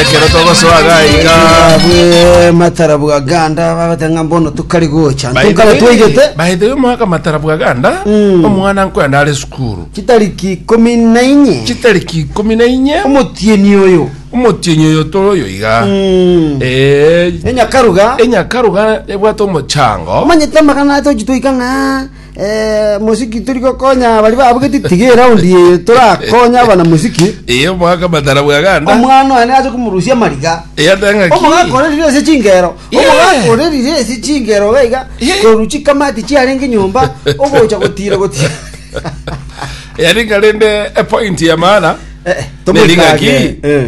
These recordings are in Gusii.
Ekero togosoa iga iga Bwe matara bwa ganda babata ng'a mbono tokari gocha ntonkaba twaigete baithe omwaka matara bwa ganda Mm. omwana nkwenda are sukuru chitariki ikomi na inye chitariki ikomi na inye omotieni oyo omotienyi oyo toro oyo iga Mm. Eh, enyakaruga enyakaruga ebwate omochango omanyete amagana atochi twaika ng'a Eh, mosiki turi gokonya bari babugeti tiga eraundi eye torakonye abana mosiki Eye omwaka matara bwa ganda. omwana one aje komurusia amariga Eye atanga ki? omogaka orerire ase chingero Yeah. omogaka orerire ase chingero gaiga Yeah. koru chikamati chiarenge nyomba ogocha gotira gotira Eye ringa rende a point ya maana. Eh, Neriga ki? tomwikage. Eh.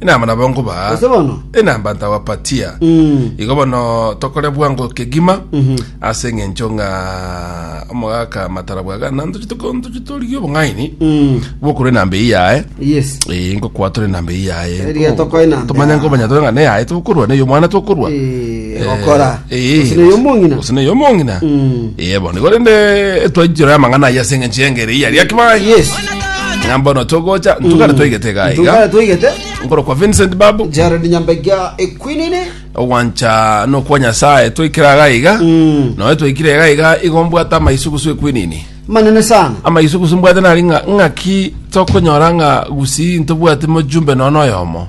Enamba nabo nkobaha Ase bono? enamba ntabapatia Mm. igo bono tokore bwango kegima ase eng'encho ng'a omogaka matara bwagana ntochi toko- ntochi torigie obong'aini Mm. bokora enamba eyi yaye Yes. Eh, ngokwa tore enamba eyi yaye Eriga tokoe enamba tumanye yaye. nkomanya tore ng'a neyaye tokorwa neyo omwana tokorwa Eh. egokora Eh, gose neye omong'ina gose neye omong'ina Mm. Eh, bono igo rende twaichora amang'ana aya ase eng'encho y'engeri eyi yari akibae yes ng'a mbono togocha ntugare twaigete iga iga tugare toigete nkoro kwa vincent babu jared nyambega ekwinini ogwancha nokwa nyasaye twaikire aga iga Mm. noe twaikire iga iga igo mbwate amaisugusu ekwinini manene sana amaisugusu mbwate nari ng'a- ng'aki tokonyora ng'a gusii ntobwate mojumbe nono oyomo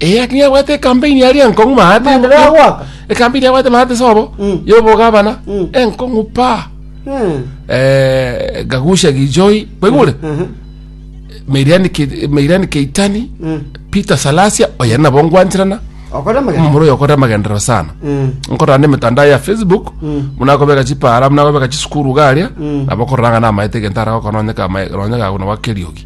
Eye aking'a abwate ekampeni aria enkong'u maate Mambere enkong'u- agoaka. ekampeni abwate maate sobo Mm. yobogabana Mm. enkong'u pa Mm. Eh, gagusha gijoi kwaigure Mhm. meirani Ke- meirani keitani Mm. peter salasia oya nabo ngwanchirana Okore magana. omomura oyo okora amagenderero sana Mm. nkorana na emitandao ya facebook Mm. munakobeka chipara munakobeka chisukuru garia Mm. nabo kororanga namaete egento ara gokononyeka ama- ronyeka aguna gwa keriogi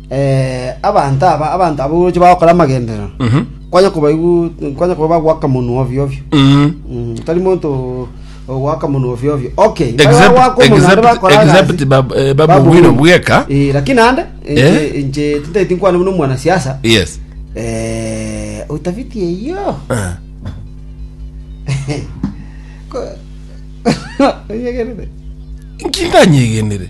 Abanto aba, abanto abwo oroche bagokora amagenderero, kwanye kobaigu- kwanye koba bagoaka monwe ovio ovio. Mm, tari monto ogoaka monwe ovio ovio. Okay, mbare Except- bagoaka omonwe naende except- bakora agasi. except bab- eh, Babu Babu Wino Wino. bweka. Eh, lakini ande inche Eh? inche tintaiti nkwana buna omwanasiasa Yes. eh utafiti eyo Ah. Ko- Onyegerere. Nkindanyegenire.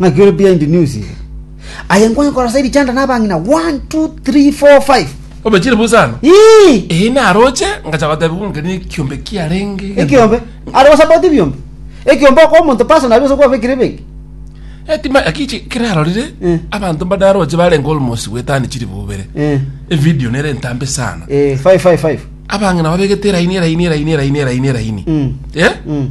Ng'aki ore behind news iga. Aye nkonye kora saidi chanda na abang'ina 1 2 3 4 5. Obechire busa ano? Ii! Eyi naroche ngacha gotebi ng'onke ne ekiombe kiarenge. Ekiombe. Are go support ebiombe. Ekiombe okwa omonto personally ose kwa bekire benki. Etima akiche kirarorire Eh. abanto mbadaroche barenge almost gwetani chiri bobere. Eh. Evideo nere entambe sana. Eh, 5 5 5. Abang'ina babegete eraini eraini eraini eraini eraini eraini. Mm. Eh? Mm.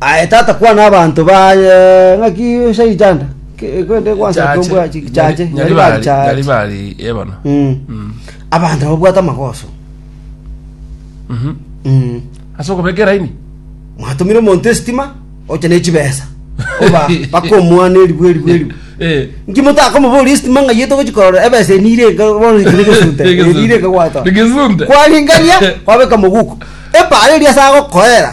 Aye tata kwana abanto baye ng'aki ase ritanda ke- kende gwansa Chache, tombwa chi- nyari- chache nyari nyari bari- bari chache. nyari bari ebana Mm. Mm. abanto babwate amagoso Mhm. Mm. ase okobeka eraini mwatumire omonto esitima oche ne chibesa oba mpaka omwana erigwe erigwe erigwe Eh. nki motakomoboria esitima ng'ai etogochi korora ebesa enire enka bono ekire gesunte Egesunte. enire enka gwatoa Egesunte. kwaringania kwabeka moguko epara eria ase agokoera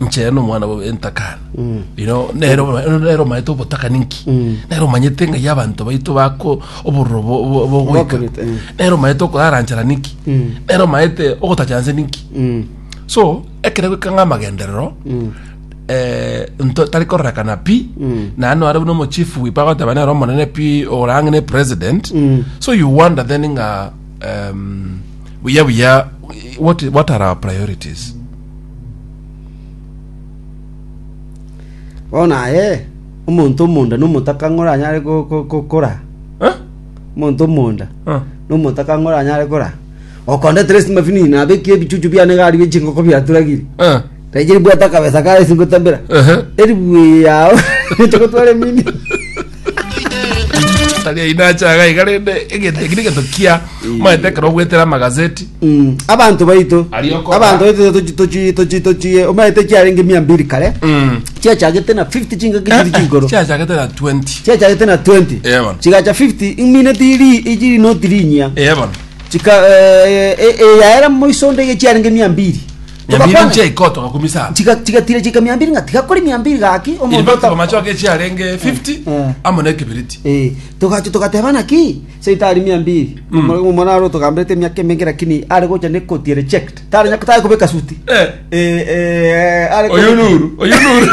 nchera nomwana bwa entakana ino nero nero omaete obotakani nki nero omanyete ng'ai abanto baito bako obororo bo- bo- bogoika Bokorete, eh. nero omaete okoraranchara niki nero omaete ogotachanse niki so ekero goika ng'a amagenderero eh, nto- tari kororekana pi naende nore buna omochief wipa agoteba nere omonene pi ore ang'e ne president so you wonder then ng'a em, buya buya what, what are our priorities Bono aye omonto omonda nomotaka ng'a oranyare go- go- gokora? Omonto omonda Ah. nomotaka ng'a oranyare gokora? Okonde at least mafinini nabekie ebichuchu biane iga aria bie chingoko biaturagire. Ah. Nainche ribwate akabesa kaye ase ngotabera. Ehe. Eribuye yao, inche gotwara emini. tari aino acha iga iga rende egento eki negento kia omanyete ekero ogwetera amagazeti Mm, abanto baito Arioko. abanto baito tochi- tochi- tochi- tochi omanyete chiarenge mia mbiri kare Mm. chiachagete na 50 chingaki chiri chigoro chiachagete na 20 chiachagete na 20 Eh, bana. chigacha 50 imineti iri ichiri noti rinyia eye bono chika eh, eh, eh, yaera moiso ndege chiarenge mia mbiri Nyambiri Togakwana. nche iko togakumisa aba. Chiga- chigatira chika mia mbiri ng'a tigakori mia mbiri gaki In omonto fact, ota- amachoka echiarenge 50 Eh. amo na ekeberiti Eh, togacha togateba naki seita ari mia mbiri omwana aro togamberete emiaka emenge lakini ari gocha nekoti reject tari nyako tari kubeka suti Eh. Eh, eh, ari oyo kubeka- nuru oyo nuru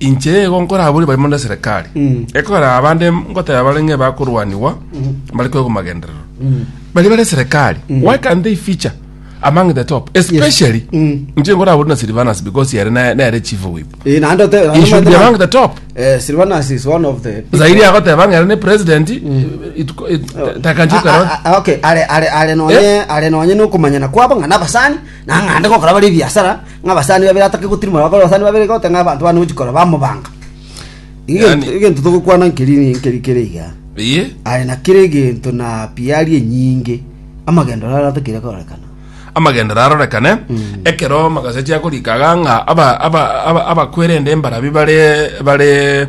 Inche nigo nkoraborie barimo neserikari ekorera abande ngoteba bare ng'e bakorwanigwa mbare kwegwa magenderero bari bare serikari why can they feature among the top especially inche nkoraborie na Silvanus because yare na- nere chief whip Eh, naende ote- he should be among the top Eh, Silvanus is one of the zaidi agoteba ng'ere ne president it- it- takanjikara A- a- a- okay, are- are- are nonye- are nonye nokomanyana kwabo ng'a nabasani Nang'ande gokora bare ebiasara ng'abasani babere atake gotirimora bakore abasani babere iga oteba ng'a abanto bana gochia korora bamobanga. Iga Yaani- egento- egento togokwana nkeri nkeri kere iga. Eye? Aye na kera egento na piari enyinge amagendero are atakeire korekana. amagendero arorekane ekero magaseti akorika iga ng'a aba- aba- aba- abakwerende mbarabi bare bare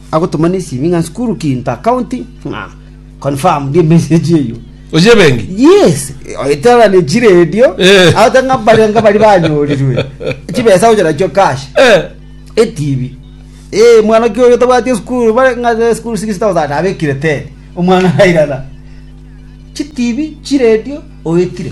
Agotoma nesimi ng'a Nsukuru Kinta County ng'a confirmed emessage eyio. Oche ebenki? Yes, oetera ne chiredio Eh. agote ng'a baria nga bari banyorirwe chibesa gocha nachio cash Eh. etibi eh mwana ki oyo tabwati esukuru bare ng'a ze school 6000 abekire 10 omwana airana chitibi chiredio oetire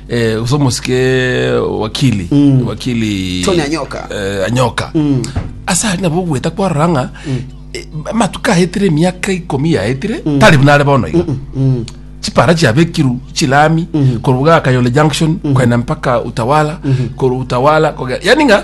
eh, gose omosike wakili wakili Tony Anyoka. eh, anyoka ase ari nabo ogweta kwarora ng'a eh, amatuko aetire emiaka ikomi yaetire tari buna are bono iga chipara chiabekiru chilami koruga kayole junction kwenda mpaka utawala koru utawala kogera yani ng'a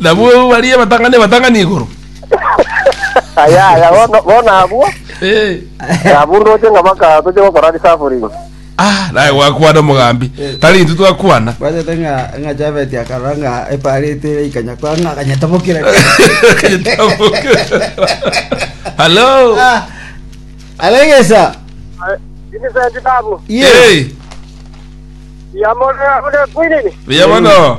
Nabwo baria batang'ani abatang'ani igoro. Aya aya bono bono abwo Eh. abundoche ng'a baka toche gokora resafuringi. Ah, naye gwakwana omogambi. Tari intwe twakwana. Bachete ng'a ng'a Javeti akarora ng'a epareti ere ikanya kwa ng'a akanyetomokera. Hello. Ah, Alegesa. Vincent babu Ye. Hey, yamore ore kwinini? buya bono.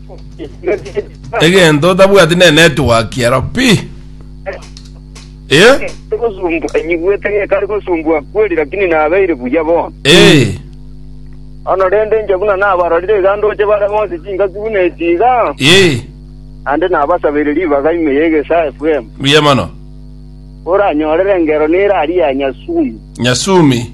egento otabwati ne network ero pi eh Gosumbwa enyigwete ng'e kari gosumbwa kweri lakini nabeire buya bono. eh Ono rende inche buna nabarorire iga ndoche bare bonsi chingaki buna eti iga eh ande nabasabeire ribaga ime ya egesa FM. buya mono Oranyorere engero neraria ya Nyasumi. nyasumi